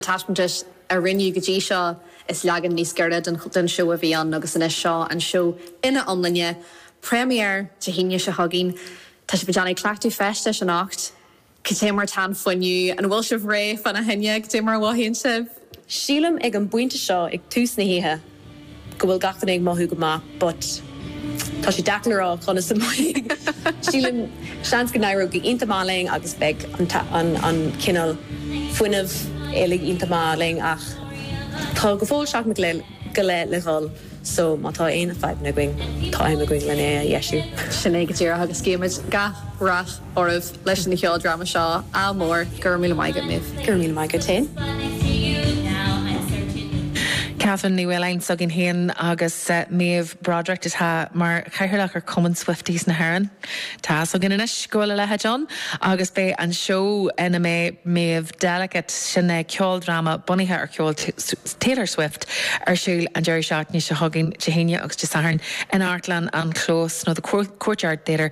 Taispeántais a rinneadh go dtí seo, is leagan níos giorra den tseó a bhí ann agus anois seo an seó ina iomláine, première Dé hAoine seo chugainn. Tá sibh ag déanamh cleachtadh feistis anocht. Cad é mar atá an fuinneamh? An bhfuil sibh réidh fána choinne? Cad é mar a mhothaíonn sibh? Sílim ag an bpointe seo ag tús na hoíche. go bhfuil gach duine ag mothú go maith but tá sé deacair a rá conas a mbeidh. Sílim, seans go n-éireoidh go hiontach maith linn agus beidh an cineál fuinneamh uilig iontach maith linn ach tá go fóill seachtain go leith le dhul so má tá aon fadhbanna againn, tá am againn lena ndeisiú. Sin é go díreach agus guímid gach rath. oraibh leis an cheoldráma seo. Ádh mór. Go raibh míle maith agat, Méabh. Go raibh míle maith agat féin. Catherine Ní Mhaoláin s'againn féin agus Méabh Broderick atá mar chathaoirleach ar Chumann Swifties na hÉireann. Tá 'fhios againn anois go bhfuil a leithéid ann agus beidh an seó ina mbeidh Méabh Delicate, sin é ceoldráma bunaithe ar cheol Taylor Swift, ar siúl an deireadh seachtaine seo chugainn, Dé hAoine agus Dé Sathairn, in Amharclann an Chlós nó The Courtyard Theatre.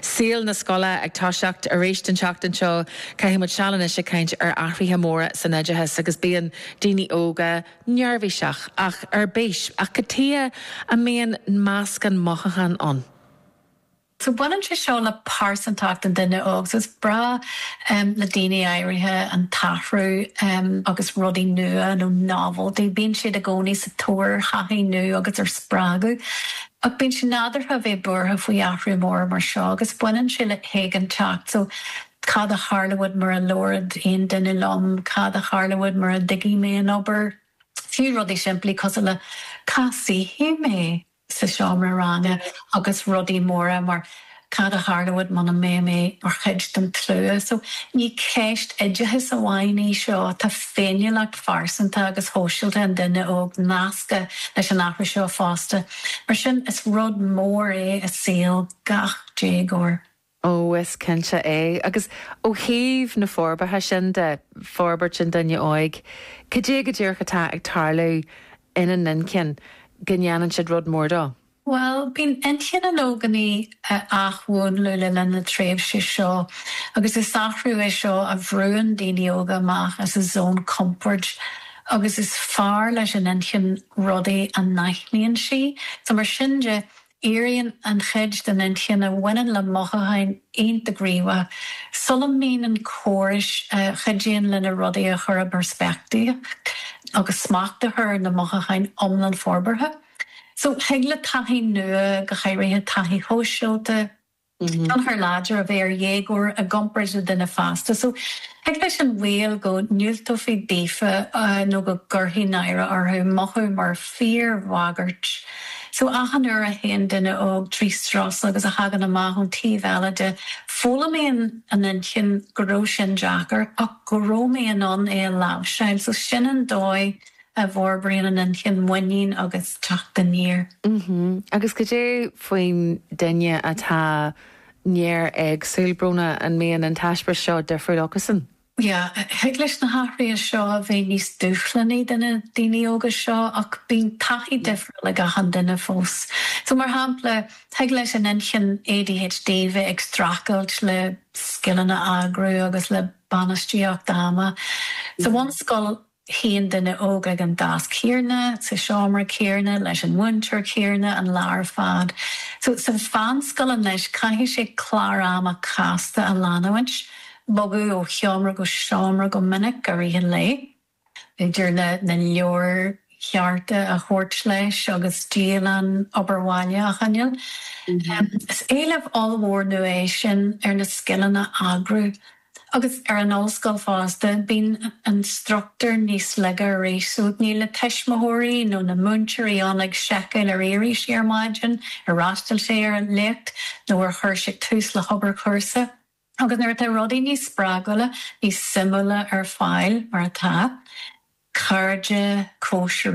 Saol na scoile ag toiseacht arís an tseachtain seo, caithfidh muid seal anois ag caint ar athruithe móra san oideachas agus bíonn daoine óga neirbhíseach, ach ar bís. Ach cad chuige a mbíonn meascán mothúchán ann. So baineann sé seo le pearsantacht an duine óg. So is breá le daoine áirithe an t-athrú agus rudaí nua nó novelty. Bíonn siad i gcónaí sa tóir ar thaithí nua agus ar spreagadh. Ach bíonn sé nádúrtha a bheith buartha faoi athrú mór mar seo agus baineann sé le héiginnteacht, so cad a tharlóidh mura labhróidh aon duine liom, cad a tharlóidh mura dtuigfidh mé an obair, fiú rudaí simplí cosúil le cá suífidh mé sa seomra ranga agus rudaí móra mar Cad a tharlóidh muna mbeidh mé mar chuid den tslua? So, ní ceist oideachais amháin í seo, tá féiniúlacht phearsanta agus shóisialta an duine óg nasctha leis an athrú seo fosta. Mar sin, is rud mór é i saol gach déagóir. Ó, is cinnte é. Agus ó thaobh na forbartha sin de, forbairt an duine óig, cad é go díreach atá ag tarlú ina n-inchinn go ndéanann siad rud mór de? Bhuel, bíonn inchinn an ógánaigh á hathmhúnlú le linn na tréimhse seo agus is athrú é seo a bhrúann daoine óga amach as a zón compoird agus is fearr leis an inchinn rudaí a n-aithníonn sí. So mar sin de, éiríonn an chuid den inchinn a bhaineann le mothúcháin iontach gníomhach sula mbíonn na córais a chuidíonn linn rudaí a chur i bpeirspictíocht agus smacht a chur ar na mothúcháin iomlán forbartha. So thig le taithí nua, go háirithe taithí shóisialta, tionchar láidir a bheith ar dhéagóir i gcomparáid le duine fásta. So thig leis an bhaol go ndiúltófaí daofa nó go gcuirtí náire orthu mothú mar fhíorbhagairt. So achan uair a théann duine óg trí strus agus a thagann amach ón taobh eile de, foghlaimíonn an inchinn go raibh sin deacair ach go raibh mé in ann é a láimhseáil. So sin an dóigh a bhforbraíonn an inchinn, muinín agus teacht aniar. Agus cad é faoin duine atá néar-éagsúil, Bróna, an mbíonn an t-eispéireas seo difriúil acusan? Yeah, thig leis na hathruithe seo a bheith níos dúshlánaí do na daoine óga seo ach bíonn taithí difriúil ag achan duine fós. So, mar shampla, thig leis an inchinn ADHD bheith ag streachailt le scileanna eagrú agus le bainistíocht ama. Sa bhunscoil, Suíonn duine óg ag an deasc chéanna, sa tseomra chéanna, leis an mhúinteoir chéanna an lá ar fad. So, sa mheánscoil anois, caithfidh sé clár ama casta a leanúint, bogadh ó sheomra go seomra go minic i rith an lae, idir na leabhair chearta a thabhairt leis agus dialann obair bhaile a choinneáil. Is éileamh ollmhór nua é sin ar na scileanna eagrú Agus ar an ollscoil fosta, bíonn an struchtúr níos laige arís, so níl na tuismitheoirí nó na múinteoirí ann ag seiceáil ar éirigh sé ar maidin, ar fhreastail sé ar an léacht nó ar chuir sé tús le hobair chúrsa. Agus nuair atá rudaí níos spreagúla, níos suimiúla ar fáil, mar atá, cairde, cóisirí,